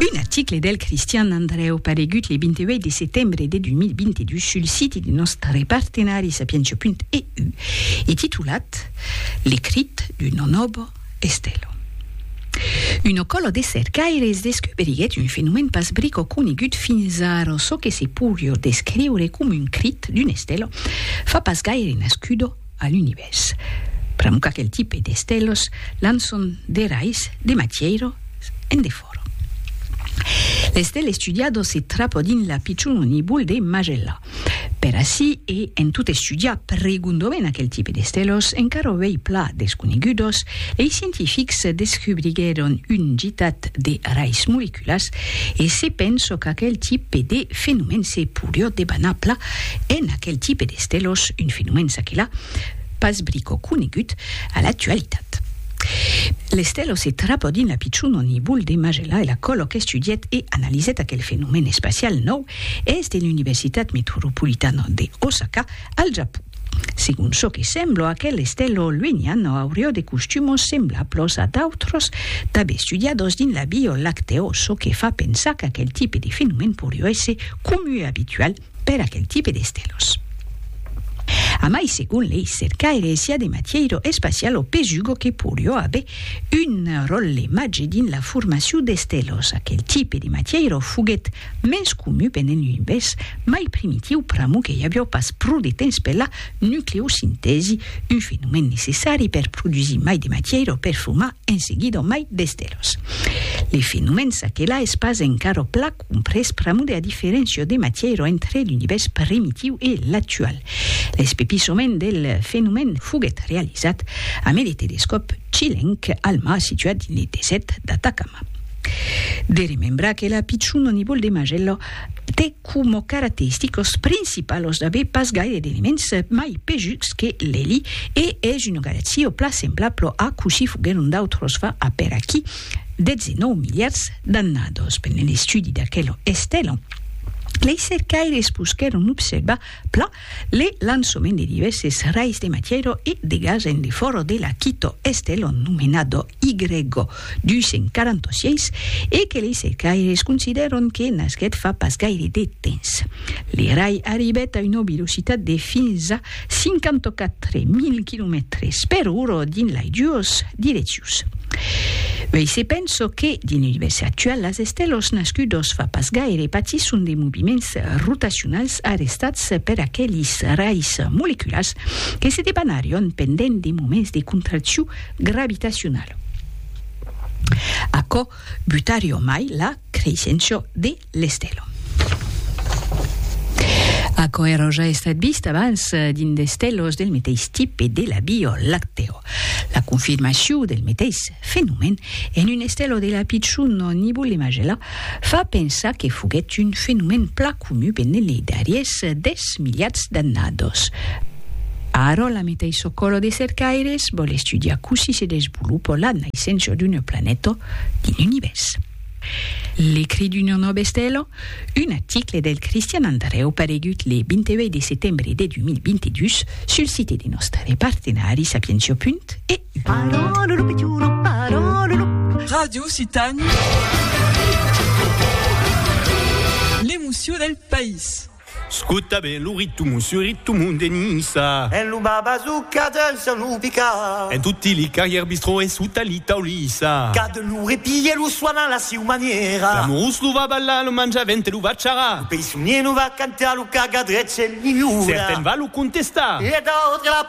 Un article del Cristian Andrèu paregut le 28 de setembre de 2022 sul siti de nòstre partenari sapientia.eu e titulat L'ecrit d'un nonobo estèlo. Un ocòlo de cercaires descuberiguèt un fenomèn pas brico conegut fins ara, çò que se pourrió descriure coma un crit d'un estèlo fa pas gaire nascudo A l'Univèrs. Pr'amor qu'aquel tipe d'estèlos lan son de rais de matièiro en de fòro. L'estèl estudiado se trapa dins la pichona nibul de Magellà. Per ací e en tot estudiar pregondament aquel tipe d'estèlos encara ovei pla desconegudos, lei scientifics descubriguèron un gitat de rais moleculars, partículas, e se penso qu'aquel tipe de fenomèn se poirió debanar pla en aquel tipe d'estèlos, un fenomèn ça que là, pas brico conegut a l'actualitat. L'estèlo se trapò dins la pichona nibul de Magellà e l'acolò qu'estudièt e analizèt aquel fenomèn espacial nòu es de l'Universitat Metropolitana de Osaka, al Japon. Segon çò que semblo, aquel estèlo lueniano aurió de costumos semblablos a d'autros tab estudiados dins la Bio Lacteo, çò que fa pensar qu'aquel tipe de fenomèn porió èsser comu e abitual per aquel tipe d'estèlos. A mai, segon lei cercaires, i a de matièiro espacial o pesugo que porió aver un ròtle màger dins la formacion d'estèlos. Aquel tipe de matièiro foguèt Mès comu venen un bes mai primitiu pramu que i avió pas pro de temps per la nucleosintèsi, un fenomèn necessari per produsir mai de matièira o per fumar en seguida mai d'estèlos. Le fenomèn s'aquelà es pas encara pla comprés pramu de la diferéncia de matièira entre l'univèrs primitiu e l'actual. L'espepissament del fenomèn foguèt realizat amé le telescòp chilenc Alma situat dins le desèrt d'Atacama. De remembrar que la pichon o nivol de magello te como carateristicos principalos d'aver pas gaire d'elements mai pejuts que l'eli e es una galaxia o pla semblablo a cossí foguèron d'autros fa apèr aquí 19 miliards d'annados. Pendent l'estudi d'aquel estèla, lei cercaires poguèron observar pla Le lançoment de divèses rais de matièro e de gas en le fòro de la Quito Estellon nomenado Y246 e que lei cercaires considèron que nasquèt fa pas gaire de temps. Le rai arribèt a una velocitat de fins a 54.000 quilomètres per ora dins lai duos direccions. Uèi se penso que, dins l'univèrs actual, las estèlos nascudos fa pas gaire patisson de moviments rotacionals arrestats per aquelis rais moleculars que se debanarion pendent de moments de contraccion gravitacionala. Aquò butarion mai la creissencion de l'estelon. Aquò èra ja estat vist abans dins d'estelos del meteis tipe de la Vio Lactèo. La confirmacion del meteis fenomèn en un estelo de la pichon nibula Magella Fa pensar que foguèt un fenomèn plan conu benlèu lei darriers dètz miliats d'annados. Ara, la meta e çò qu'òro de cercaires vòl estudiar cossí se desvolopò la naissença d'una planeta dins l'univèrs. L'ecrit d'una nòva estela, un article del Cristian Andrèu paregut le 28 de setembre de 2022 sul site de nòstre partenari Sapientia. E. Radio Occitània, l'emocion del país. Scota ben lo ritmo su ritmo de Niça. En lo Babazuca dens en lo Pica. En toti li carrièrs bistrò e sota li taulissa. Qu'a de lo repilh e lo soan a la siu manièra. L'amorós lo va ballar, lo manjavent e lo va charrar. Lo peissonier lo va cantar, lo cagadrets e li liura. Certen va lo contestar. E d'autres la.